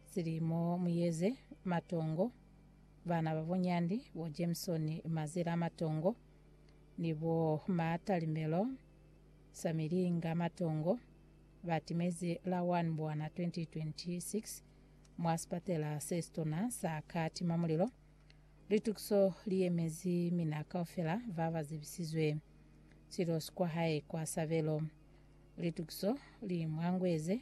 Silimo Muyeze Matongo, Bana ba bo Nyandi, bo Jameson Mazela Matongo, ni bo Ma Talimelo Samilinga Matongo, ba timezi la 1 Mbwana 2026 mwa sipatela se sitona sa Katima Mulilo. Litukiso li yemezi mina kaufela ba ba zebisizwe silosi kwa hae kwa sabelo. Litukiso li mwangweze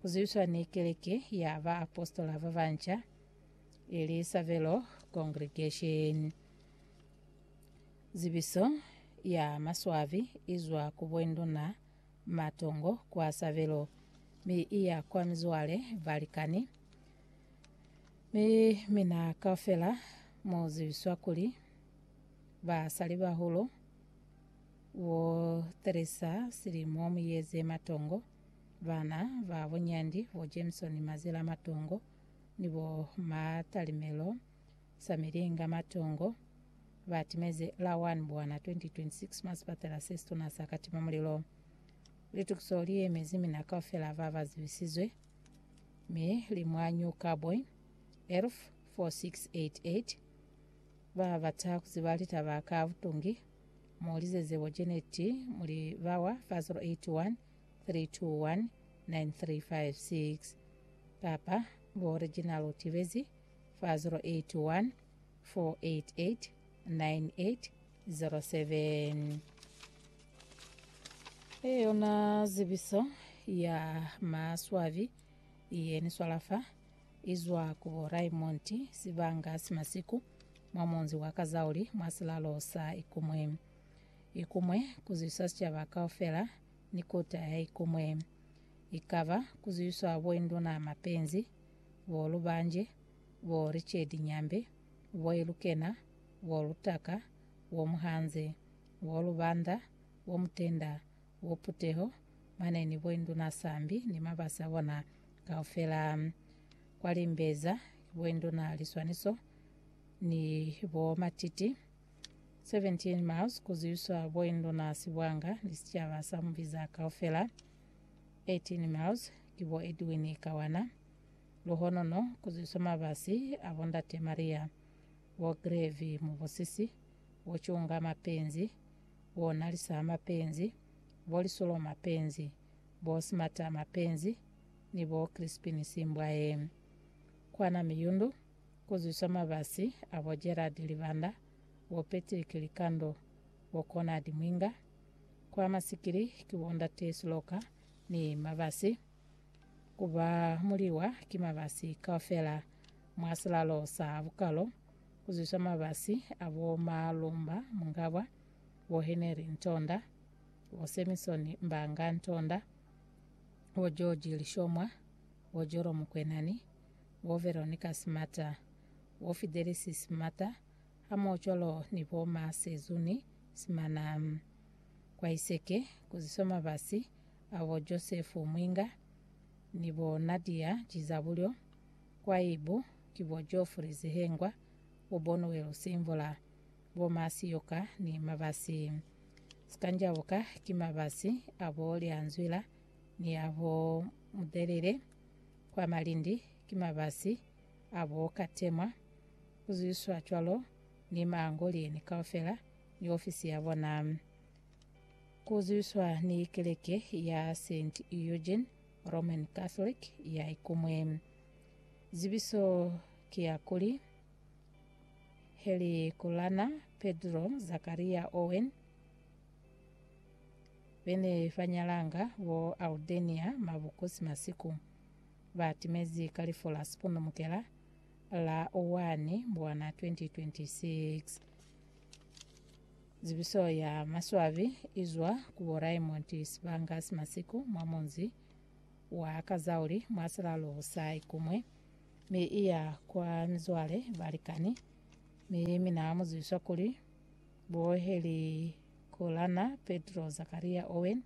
Ku zwiswa ni Keleke ya Baapositola ba Banca, ili Savelo Congregation. Zibiso ya maswabi i zwa ku Bwenduna Matongo kwa Savelo, mi i ya kwa mizwale, balikani, mi mina kaufela mu zibiswa kuli Basalibahulu bo Teresa Silimo Muyeze Matongo. Bana ba bo Nyandi, bo Jameson Mazila Matongo ni bo Matalimelo Samilinga Matongo ba timeze la 1 Mbwana 2026 mwa sipatela se situna sa Katima Mulilo. Litukiso li yemezi mina kaufela ba ba zibisizwe mi li mwa New Cowboy, ERF 4688. Ba bata ku ziba litaba ka butungi, mu lizeze bo Janet Muli bawa fa 081 3219356 kapa bo original u tibezi fa 081 488 9807. Yona zibiso ya maswabi ye ni swala fa i zwa ku bo Raymond Sibanga Simasiku mwa munzi wa Kazauli mwa silalo sa Ikumwe. ikumwe kuzwiswa sicaba kaufela ni kota yaikumwe, ikaba kuzwiswa boinduna mapenzi, bo Lubanje, bo Richard Nyambe, bo Ilukena, bo Lutaka, bo Muhanze, bo Lubanda, bo Mutenda, bo Puteho, mane ni boinduna sambi ni mabasi abona kaufela. Kwa Limbeza ki boinduna Liswaniso ni bo Matiti 17 miles ku zwiswa boinduna sibwanga ni sicaba sa mubiza kaufela, 18 miles ki bo Edwin Kawana, luhonono ku zwiswa mabasi a bo ndate Maria, bo Grevy Mubusisi, bo Cunga Mapenzi, bo Nalisa Mapenzi, bo Lisulo Mapenzi, bo Smata Mapenzi ni bo Crispin Simbwaye. Kwana Miyundu. Ku zwisa mabasi a bo Gerald Libanda, bo Patrick Likando, bo Conard Mwinga, ku ama sikili ki bo Ndate Siloka ni mabasi, ku ba muliwa ki mabasi kaufela mwa silalo sa bukalo, ku zwisa mabasi a bo Malumba Mungabwa, bo Henry Ntonda, bo Samson Mbanga Ntonda, bo George Lishomwa, bo Joromu Kwenani, bo Veronica Smata, bo Fidelis Smata hamoho cwalo ni bo ma Sezuni Simana. Kwa Iseke kuziswa mabasi a bo Joseph Mwinga ni bo Nadia Jizabulyo, kwa Ibu ki bo Geoffrey Zihengwa, bo Bonuel Simvula, bo ma Siyoka ni mabasi. Sikanjabuka ki mabasi a bo Lyanzwila ni a bo Mudelele. kwa malindi ki mabasi a bo katemwa, ku zwiswa cwalo ni maangoliyeni kaufela ni ofisi ya bona. Ku zwiswa ni keleke ya Saint Eugene Roman Catholic ya Ikumwe. Zibiso ki ya kuli, Helikulana Pedro Zakaria Owen, be ne ba nyalanga bo Aldenia Mabukosi Masiku ba timezi ka lifu la sipondomukela la 1 Mbwana 2026. Zibiso ya maswabi i zwa ku bo Raymond Sibangasi Masiku mwa munzi wa Kazauli mwa silalo sa Ikumwe mi i ya kwa mizwale, balikani, mi mina mu zibiswa kuli Bo Harry Kolana, Petro Zakaria Owen,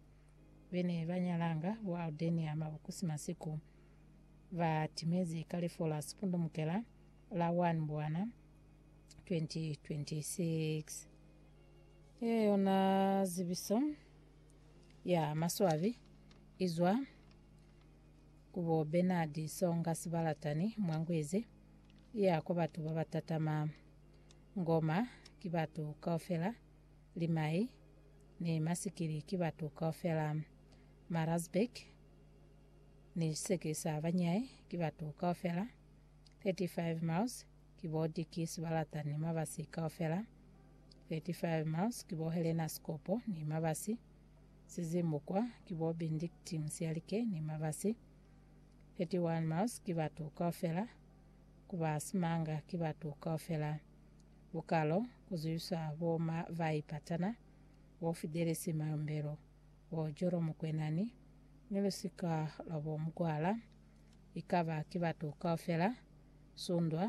be ne ba nyalanga bo Aldenia Mabukusi Masiku, ba timezi ka lifu la Sipundumukela la 1 Mbwana 2026. Ye yona zibiso ya maswabi izwa ku bo Bernard Songa Sibalatani mwa Ngwezi, iya kwa batu ba batatama. Ngoma ki batu kaufela, limai ni masikili ki batu kaufela, marazbek ni siseke sa banyai ki batu kaufela, 35 miles ki bo diki sibalata ni mabasi kaufela, 35 miles ki bo helena sikopo ni mabasi, sizimbukwa ki bo bindikting sialike ni mabasi, 31 miles ki batu kaufela, ku ba simanga ki batu kaufela. Bukalo, ku zwiswa bo ma bai patana, bo fidelisi mayombelo, bo jolo mukwenani, ni lusika lwa bo mugwala, i ka ba ki batu kaufela, sundwa,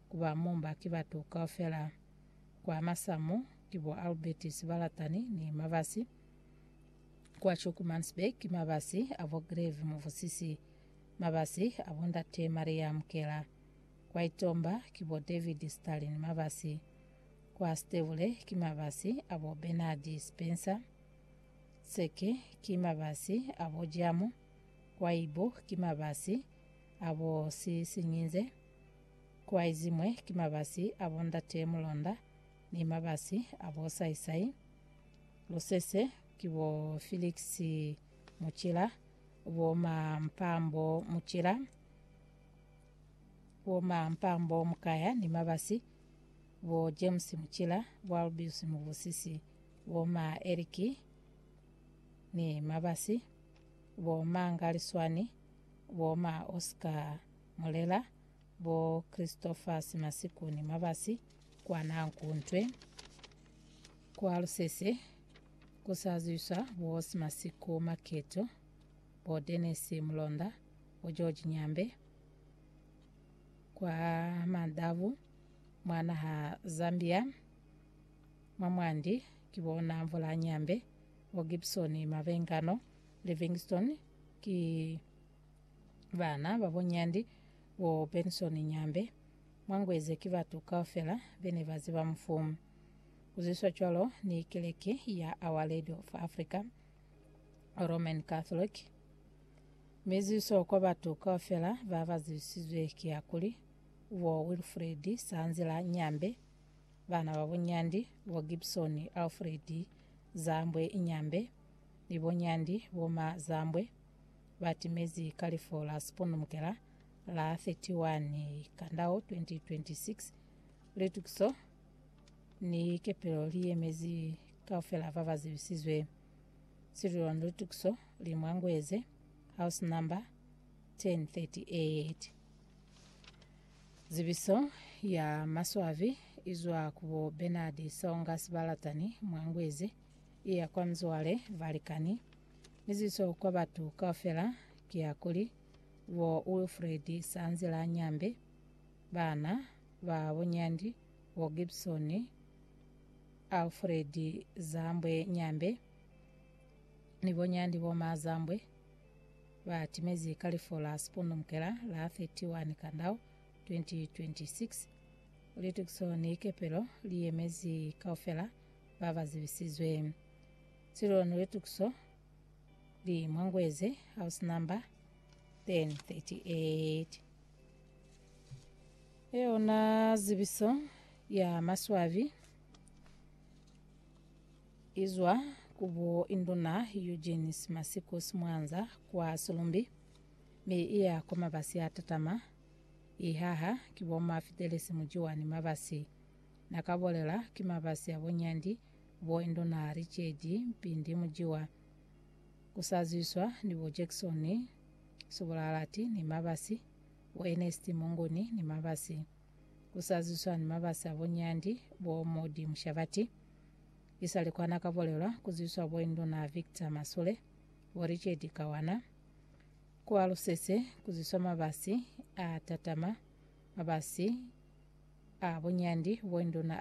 ku ba mumba ki batu kaufela. Kwa masamu ki bo Albert Sibalatani ni mabasi, kwa Chukumansberg ki mabasi a bo Greve Muvusisi. Mabasi a bo Ndate Maria Mkela, kwa Itomba ki bo David Stalin Mabasi, kwa Stebule ki mabasi a bo Bernard Spencer Tseke, ki mabasi a bo Jamu, kwa Ibo ki mabasi a bo Sisinyinze, kwa Izimwe ki mabasi a bo Ndate Mulonda ni mabasi a bo Saisai Lusese ki bo Felix Mucila, bomampambo mucila, bomampambo mukaya ni mabasi, bo James Mucila, bo Albius Mubusisi, boma Eric ni mabasi, bo Manga Liswani, boma Oscar Mulela, bo Christopher Simasiku ni mabasi, kwa Nankuntwe, kwa Lusese, Ku sa zwiswa bo Simasiko Maketo, bo Dennis Mulonda, bo George Nyambe kwa Mandavu mwa naha Zambia, mwa mwandi ki bo Namvula Nyambe, bo Gibson Mabengano, Livingston ki bana ba bo Nyandi, bo Benson Nyambe, mwa Ngweze ki batu kaufela be ne ba ziba mufu. Ku zwiswa cwalo ni Keleke ya Our Lady of Africa, Roman Catholic, mi zwiso kwa batu kaufela ba ba zwisizwe ki ya kuli, bo Wilfred Sanzila Nyambe, bana ba bo Nyandi, bo Gibson Alfred Zambwe Nyambe, ni bo Nyandi bo Ma Zambwe, ba timezi ka lifu la siponumukela la 31 Kandau 2026. Litukiso Ni likepelo li yemezi kaufela ba ba zibisizwe. Silulwani lutukiso li mwangueze, house number 1038. Zibiso ya maswabi izwa ku bo Bernard Songa Sibalatani mwangueze, iya kwa mizwale, balikani, ni zibiso kwa batu kaufela ki ya kuli, bo Wilfred Sanzila Nyambe, bana, ba bunyandi, bo Gibson, Alfred Zambwe Nyambe, ni bo Nyandi Bomaa Zambwe, ba timezi ka lifu la Sipundumukela la 31 Kandau 2026. Litukiso ni kepelo li yemezi kaufela ba ba zibisizwe. Sililo ni litukiso li Mwangweze, house number 1038. Yona zibiso ya maswabi izwa ku bo Induna Eugene Simasiku Simwanza kwa Sulumbi mi iya kwa mabasi a tatama, ihaha ki bo Mafidelisi Mujiwani Mabasi. Na ka bolela ki mabasi a bo Nyandi, bo Induna Richedi Mpindi Mujiwa, ku sa zwiswa ni bo Jackson Subulalati ni mabasi Bo Ernest Munguni ni Mabasi ku sa zwiswa ni mabasi a bo Nyandi, bo Modi Mushabati. Isali kwa na ka bolelwa ku zwiswa bo Induna Victor Masule, bo Richard Kawana. Ku ba lusese ku zwiswa mabasi a tatama, mabasi a bo Nyandi, bo Induna